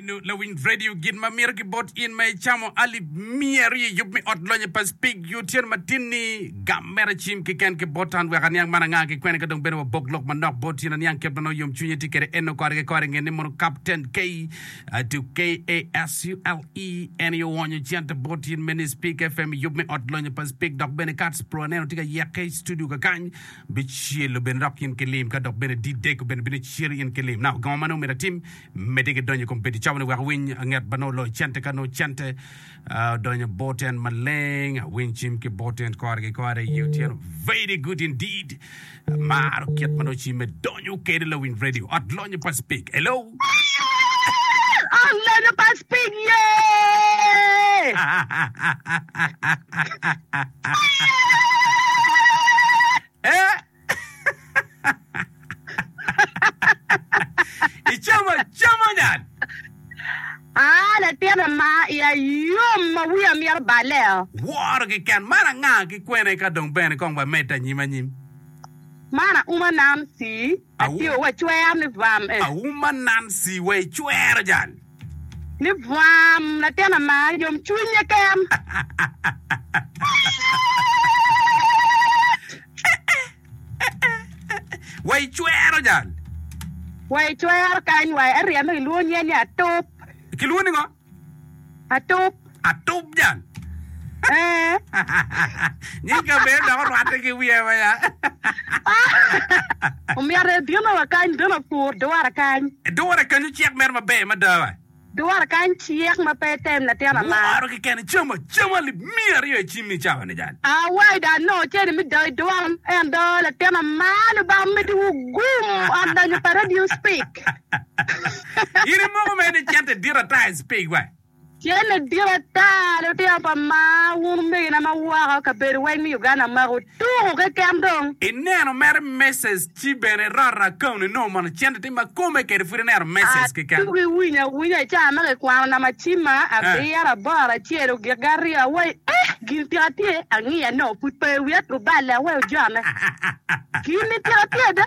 Nino lawiny radio gin ma mito ki bot in ma icamo alip miya aryo i yub me ot lonye pa Spig yo tyen matin ni gam mere acim kiken ki bot an wek aniang man anga ki kwene ka dong bene wabok lok manok bot in aniang kit ma nongo yom cwinye tye kede eno kore ki kore ngen ni mono Captain K to KASULE en i owonyo cente bot in me ni Spig FM i yub me ot lonye pa Spig dok bene Kats Pro aneno tye ka yeke i studio kakany Bicelo bene dok in ki lim ka dok bene dideko bene bino celo in ki lim. Na ogongo mano myero atim medde ki donyo i kom pedi cawa ni wek awiny nget ba nongo loyo cente ka nongo cente odonyo bor ten maleng awiny cim ki bor ten kore ki kore iye otyeno very good indeed amaro kit ma nongo cimme donyo kede lawiny radio ot lonyo pa speak hello Ot lonyo pa speak yeah Icamo acama dan. Aa latin ama i a yom ma wiya mito baleo. Woro kiken man anga ki kwene ka dong bene kong ba medde anyim anyim. Man a uma nan si. Atio wa cwer ni vam eh. Auma Nancy wa i cwero jal. Ni vam latin ama yom cwiny ye ken. Wa i cwero jal. Wa i cwero kany wa eryeme kilwongo nyen ni atup. Kilwongo ni ngo? Atup. Atup jang. Ee. Nying kabedo dok orwatte ki wiye ma ya. Omyero ebino wa kany bene opur dwara kany. Dwara kany ocek mere maber mada wa. Dwara kany cek ma pe etem latin ama. Woro keken icamo acama alip miya aryo icimmi cawa ni jang. Awaida anongo ce ni me dao idwal ento latin ama Lubanga omeddi wu gum ot donyo pa radio speak. In imoko mere ni cente dit ata i cpig wa? Cente dit ata, lutino pa maa, wun omegina ma woko, kabedo weng me Uganda mako tuku keken dong. I neno mere meses ci bene irot account inongo mono cente ti ma kome kede pud ineno meses keken. Atuku iwinyo awinya i cawa ma kikwano nama cima abiro, aboro, acel, ogikgi aryo, awayi eh! gini tika tye? Angiya nongo pud pe i wiya tuku balle aweyo ojone. Gini tika tye ada?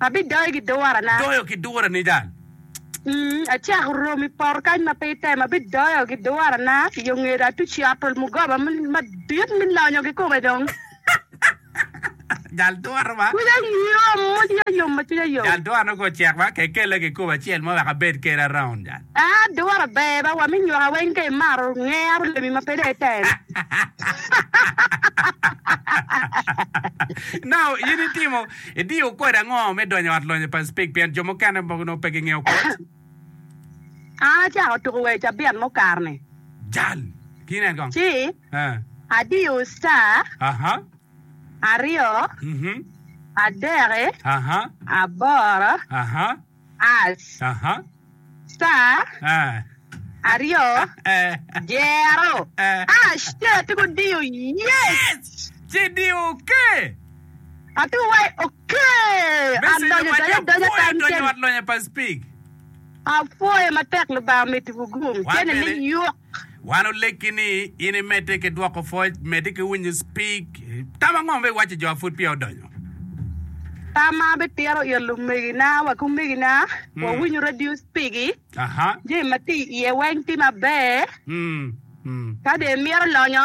Abidoyo ki durana. Doyo ki durani dal. Acako romo i poto kany ma pe itemo, abidoyo ki durana i yo ngeda, atuco atol mugoba madit me lonyo kikome dong. Jal dura ma. Cwinya yom ma cwinya yom ma cwinya yom. Jal dura nongo ocek ma kekelle kikome acel mo wek abed kede around jal. Aa, dura ber ba wa me nyoka weng ka imaro ngero lemi ma pe dong item. Nao, in itimo, idiyo kodi ango me donyo i ot lonyo pa Speke pien jo mukene mogo nongo pe gingeyo kot? An acako tuko wer cabit mukar-ni. Jal, Ki nen kong. Ci Eh. adiyo star Aha. aryo, Mhm. adek, Aha. aboro, Aha. Aas, ca, aryo, dyero, Aas, ca, ci gudiyo Yes! Ci diyo Okee! Ati wai Okee! A donyo donyo adonya kany cen. Apwoyo matek Lubanga mitiwu gum cene me yuk. Wan olegi ni in imedde ki dwoko pwoc, medde ki winyo cpig. Tam ango ma iwacci jo ma pud peya odonyo? Tam ma abipito it lumegina wa ki omegina, wawinyo radio cpigi, Aha. jami ma tye iye weng tye maber. Ka dong imito lonyo.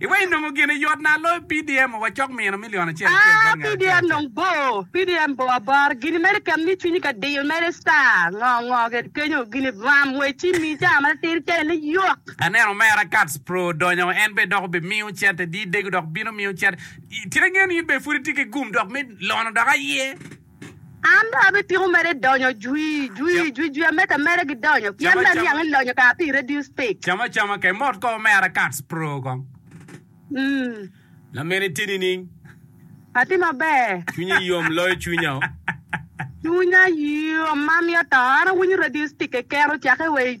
Iweko inongo gini yot na loyo PDM ma wacok mino milion acel acel Aa, bot ngat acel PDM acel. dong bor. PDM bor abor. Gini mere keken ni cwinyi ka diyo mere star. Ngo ngo kede kenyo. Gini ram we ci mi caa ma latir cene ni yok. Aneno omera Kats Pro donyo en bene dok obimiyo cente di dego dok bino miyo cente. Tye ka ngeyo ni in bene pud itye ki gum dok me lono dok aye. An dong abipiko mere donyo jwi, jwi, jwi, jwi ameta mere gidonyo, pien Cam dong acama. niang ilonyo kara pi radio speak. Cam acama kei mot ko omera Kats pro kong. Mm, Lamin itye nining? atye maber. Cwinyi yom loyo cwinya o. Cwinya yom ma mito to, an awinyo radio speak keken ocakke wa i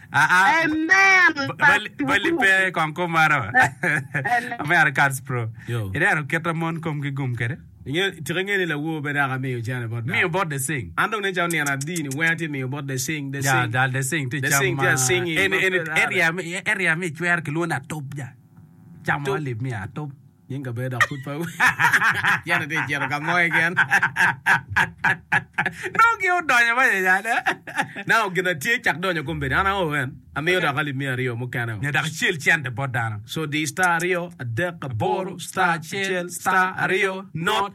Amen. Bali pe kong kom maro. Amen. Cards pro. Ineno kit a mon komgi gum kede? Tika inge ni lawor bene aka miyo cene bot dal? Miyo bot the sing. An dong nen calo nino adi ni wenge tye miyo bot the sing. The sing. Dal the sing tye cam ma. Area mi icwero kilwongo ni atop ja. Cam mo alip miyo atop. Nying kabedo dok pud pe cente tye cito ka mo keken. Nongo gin odonyo ma yeyane. Nao gin atye cak donyo kombedi an aoo en amiyo dok alip miya aryo mukene o. Nyo dok icel cente bot dano. So diyo star aryo adek aboro star acel star aryo not.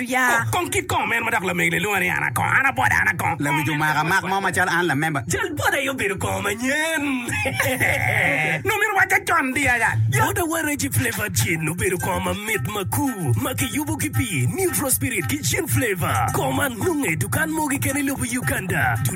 Kok kong ki kom en ma dok lamegi lelunga ni an akong, an abwada, an akong. Lawic omaka mak mo macalo an lamemba. Jal bwada aye obedo kong manyen. Nongo myero owacce con di aya. Bwada wa Reggie Flavour Gin obedo kong mamit makur ma kiyubo ki pi Neutral Spirit ki Gin Flavour. Kong man nonge i dukan mogi kene i lobo Uganda.